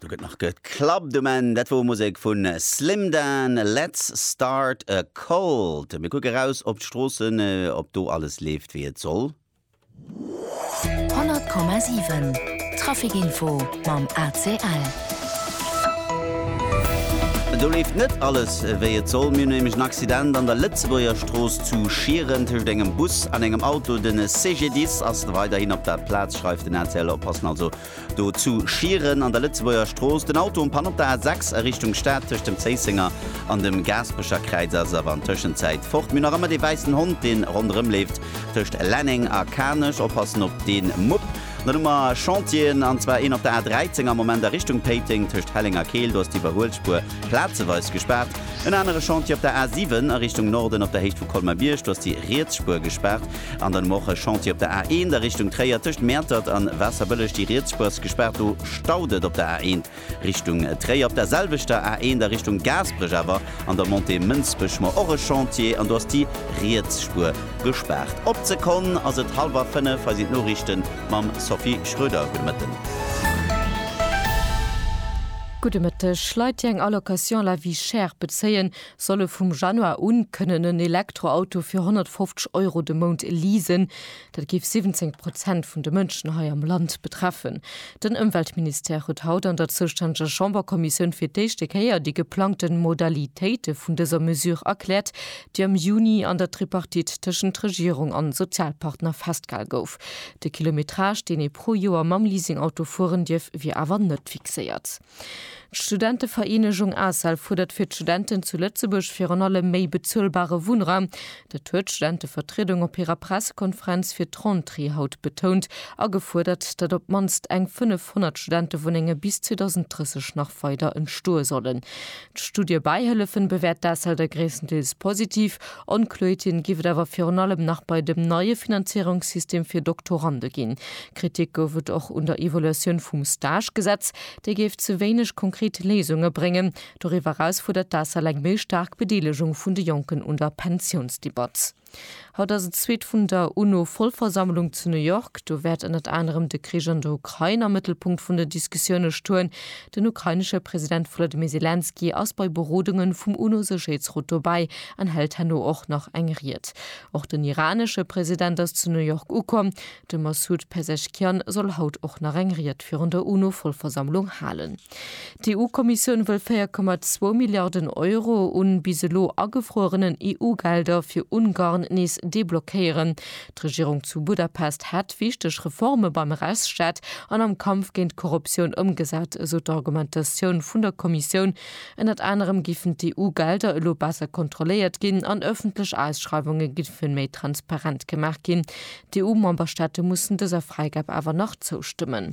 Do gëtt nach geklappt um Enn. Dat wor Musek vun Slimdan, Let's Start a Cult. Mir kucke raus op d'Stroossen, ob do alles leeft wéi et soll. 100,7 Traficinfo mam ACL. Do leeft net alles wéi et soll. Mir hunn nämlech en Accident an der Lëtzebuerger Strooss zu Schieren tëscht engem Bus an engem Auto. De CGDIS ass weiderhin op der Plaz. Schicht, schreift den ACL. Op passen also do zu Schieren an der Lëtzebuerger Strooss. Den Auto um Panne op der A6 a Richtung Stad tëscht dem Zéissenger an dem Gaasperecher Kräiz ass awer an Tëschenzäit fort. Mir nach ëmmer dee wäissen Hond, deen ronderëm leeft tëscht Lenneng a Kanech. Op passen op dee Mupp. Dann hu mer Chantieren, an zwar een op der A13 am Moment a Richtung Péiteng tëscht Helleng a Keel. Do ass d'Iwwerhuelspuer plazeweis gespaart. En anere Chantier op der A7 a Richtung Norden op der Héicht vu Colmer-Bierg. Do ass déi riets Spuer gespaart. An dann hu mer och e Chantier op der A1 a Richtung Tréier, tëscht Mäertert an Waasserbëlleg. Déi riets Spuer ass gespaart, do staut et op der A1 Richtung Tréier. Op der selwechter A1 a Richtung Gaasperech awer an der Montée Mënsbech hu mer och e Chantier an do ass déi riets Spuer gespaart. Op d'Sekonn ass et hallwer fënnef. Hei sinn d'Noriichte mam Sophie Schröder. Gudde Mëtten. Gudde Mëtteg. Leit, déi eng Allocation à la vie chère bezéien, soll e vum Januar un kënnen en Elektroauto fir 150 Euro de Mount leasen. Dat géif 17 Prozent vun de Mënschen hei am Land betreffen. Den Ëmweltministère huet haut an der zoustänneger Chamberkommissioun fir d'éischte Kéier déi geplangte Modalitéite vun dëser Mesure erkläert, déi am Juni an der Tripartite tëschent Regierung an Sozialpartner festgehal gouf. De Kilometrage, deen ee pro Joer mam Leasingauto fueren dierf, wier awer net fixéiert. D'Studentevereenegung ACEL fuerdert fir d'Studenten zu Lëtzebuerg virun allem méi bezuelbare Wunnraum. Dat huet d'Studentevertriedung op hirer Pressekonferenz fir d'Rentrée haut betount a gefuerdert, datt op d'mannst eng 500 Studentewunnenge bis 2030 nach weider entstoe sollen. D'Studie Bäihëllefen bewäert d'Asselder gréisstendeels positiv. Onkloeerten géif et awer virun allem nach bei dem neie Finanzierungssystem fir Doktorande ginn. Kritik gouf et och un der Evaluatioun vum Stage-Gesetz. Déi géif ze wéineg konkret Léisunge bréngen. Doriwwer eraus fuerdert d'Asel eng méi staark Bedeelegung vun de Jonken un der Pensiounsdebatt. Haut ass et d'zweet vun der UNO-Vollversammlung zu New York. Do wäert ënnert anerem de Krich an der Ukrain am Mëttelpunkt vun den Diskussioune stoen. Den ukrainesche President Volodymyr Selenskyj ass bei Berodungen vum UNO-Sécherheetsrot dobäi an hält herno och nach eng Ried. Och den iranesche President ass zu New York ukomm. De Massoud Pezeshkian soll haut och nach eng Ried virun der UNO-Vollversammlung halen. D'EU-Kommissioun wëll 4,2 Milliarden Euro u bis elo agefruerenen EU-Gelder fir Ungarn nees deblockéieren. D'Regierung zu Budapest hätt wichteg Reforme beim Rechtsstaat an am Kampf géint d'Korruptioun ëmgesat, esou d'Argumentatioun vun der Kommissioun. Ënnert anerem géifen d'EU-Gelder elo besser kontrolléiert ginn an ëffentlech Ausschreiwunge géifen méi transparent gemaach ginn. D'EU-Memberstaate mussen dëser Fräigab awer nach zoustëmmen.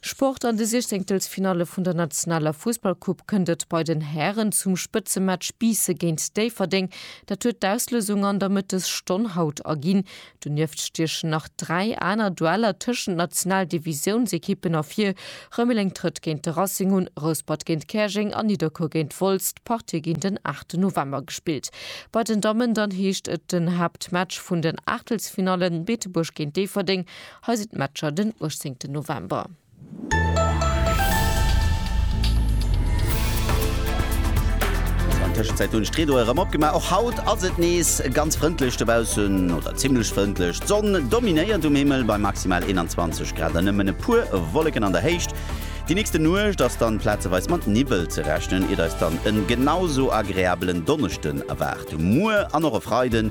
Sport, An de Siechzéngtelsfinalle vun der nationaler Fussballcoupe kënnt et bei den Hären zum Spëtzematch Biisse géint Déifferdeng. Dat huet d'Auslösung an der Mëttesstonn haut erginn. Donieft stiechen nach 3 aner Dueller tëschent Nationaldivisiounsekippen ervir, Rëmeleng trëtt géint de Racing un, Rouspert géint Käerjeng a Nidderkuer géint Wolz. D'Partië ginn den 8 November gespillt. Bei den Dammen dann heescht et den Haaptmatch vun den Aachtelsfinallen, Beetebuerg géint Déifferdeng Hei sinn d'Matcher den 18 November. Tëschenzäit hunn ech d'Rideaue rëm opgemaach. Och haut ass et nees ganz frëndlech dobaussen, oder zimmlech frëndlech. D'Sonn dominéiert um Himmel bei maximal 21 Grad an nëmmen e puer Wolleken an der Héicht. Déi nächste Nuecht ass dann plazeweis mat Niwwel ze rechnen, iert eis dann en genau sou agreabelen Donneschden erwaart. Muer an och e Freiden